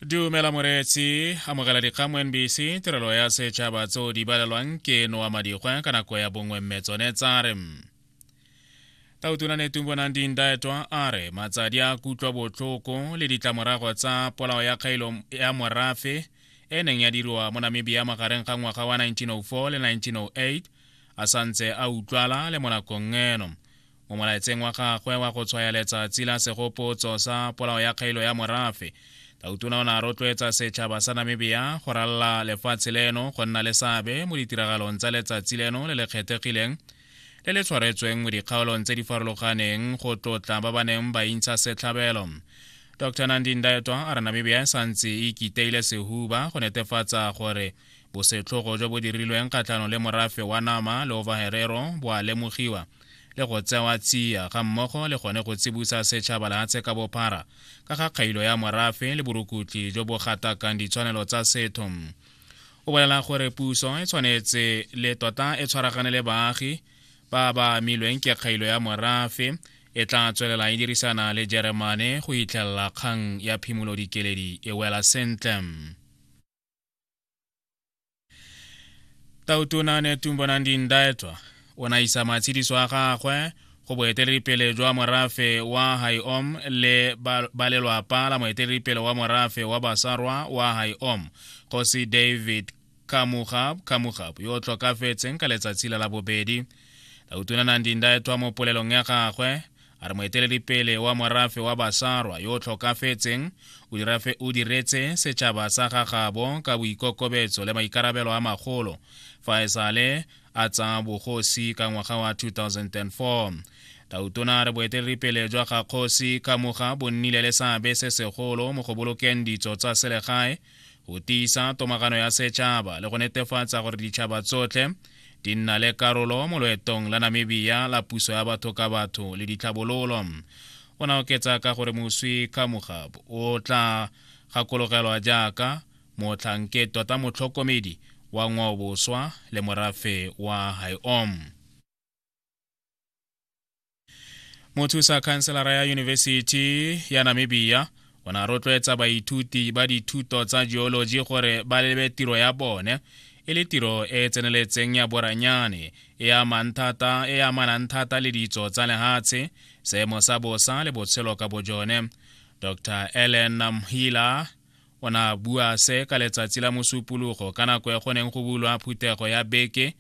dumela moreetsi amogela dikgang mo nbc tirelo ya setšhaba tseo di balelwang ke noa madikgwa ka nako ya bongwe mme tsone tsa re tautona netumbonang dindaetwa a re matsadi a kutlwa botlhoko le ditlamorago tsa polao ya kgaelo ya morafe e neng ya diriwa mo namibia magareng ga ngwaga wa 1904 le 1908 a santse a utlwala le mo nakong eno mo molaetseng wa gagwe wa go tshwaya letsatsi la segopotso sa polao ya kgailo ya morafe tautona o ne a rotloetsa setšhaba sa namibia go ralla lefatshe leno go nna le seabe mo ditiragalong tsa letsatsi leno le le kgethegileng le le tshwaretsweng mo dikgaolong tse di farologaneng go tlotla ba ba neng ba intsha setlhabelo dr nandindaetwa a re namibia e santse e ikiteile sehuba go netefatsa gore bosetlhogo jo bo dirilweng kgatlhanong le morafe wa nama le overherero bo a lemogiwa le go tsewa tsia ga mmogo le gone go tsibusa setšhaba lehatshe ka bophara ka ga kgailo ya morafe le borukutli jo bo gatakang ditshwanelo tsa setho o bolela gore puso e tshwanetse le tota e tshwaragane le baagi ba ba amilweng ke kgailo ya morafe e tla tswelela e dirisana le jeremane go itlhelela kgang ya phimolodikeledi e wela sentle tautona netumbo nandindaetwa o na isa matshidiso a gagwe go boeteledipele jwa morafe wa haiom le ba lelwapa la moeteledipele wa morafe wa basarwa wa haiom kgosi david kamugab kamugab yo o tlhokafetseng ka letsatsi la labobedi tautona nandindaetwa mo polelong ya gagwe a re moeteledipele wa morafe wa basarwa yo o tlhokafetseng o diretse setšhaba sa gagabo ka boikokobetso le maikarabelo a magolo fa e sale a tsa bogosi ka ngwaga wa 2004 tautona a re boeteledipele jwa ga kgosi ka moga bo nnile le seabe se segolo mo go bolokeng ditso tsa selegae go tiisa tomagano ya setšhaba le go netefatsa gore ditšhaba tsotlhe di nna le karolo mo loetong la namibia la puso ya batho ka batho le ditlhabololo o na oketsa ka gore moswi kamogab o tla gakologelwa jaaka motlhanke tota motlhokomedi wa ngwaoboswa le morafe wa haiom mothusa khanselara ya yunibesithi ya namibia o ne a rotloetsa baithuti ba dithuto tsa geology gore ba lebe tiro ya bone e le tiro e e tseneletseng ya boranyane e e amanang thata le ditso tsa lehatshe seemo sa bosa le botshelo ka bojone dr ellen mhila O ne a bua se ka letsatsi la mosupologo ka nako ya go neng go bulwa phuthego ya beke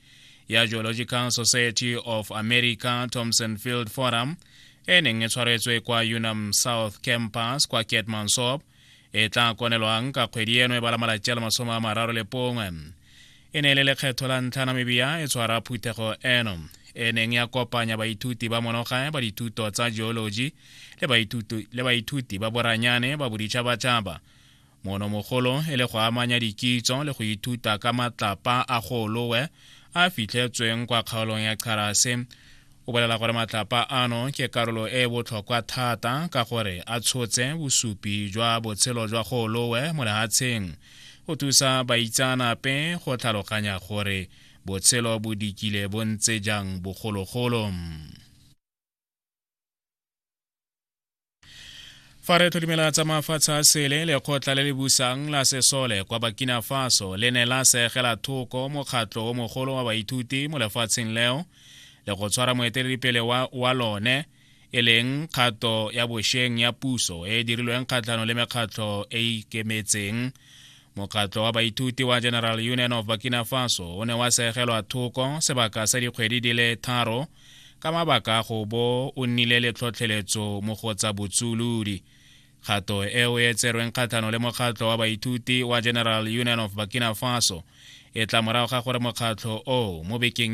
ya Geological Society of America Thompson Field Forum e neng e tshwaretswe kwa Unam South Campus kwa Keetmansop e tla konelwang ka kgwedi eno e bala malatsi a le masome a mararo le pongwe e ne e le lekgetho la ntlha namibia e tshwara phuthego eno e neng ya kopanya baithuti ba monogae ba dithuto tsa geology le baithuti ba boranyane ba boditšhabatšhaba mono mogolo e le go amanya dikitso le go ithuta ka matlapa a golowe a fitlhetsweng kwa kgaolong ya kgarase o bolela gore matlapa ano ke karolo e e botlhokwa thata ka gore a tshotse bosupi jwa botshelo jwa golowe mo lehatsheng go thusa baitsaanape go tlhaloganya gore botshelo bo dikile bo ntse jang bogologolo fa re tlhodimela tsa mafatshe a sele lekgotla le le busang la sesole kwa bakina faso le ne la segela thoko mokgatlho o mogolo wa baithuti mo lefatsheng leo le go tshwara moeteledipele wa, wa lone e leng kgato ya bosheng ya puso e e dirilweng kgatlhano le mekgatlho e e ikemetseng mokgatlho wa baithuti wa general union of burkina faso o ne wa segelwa thoko sebaka sa dikgwedi di le tharo ka mabaka a go bo o nnile le tlhotlheletso mo go tsa botsulodi kgato eo e tserweng kgatlhano le mokgatlho wa baithuti wa general union of burkina faso e tla morago ga gore mokgatlho oo mo bekeng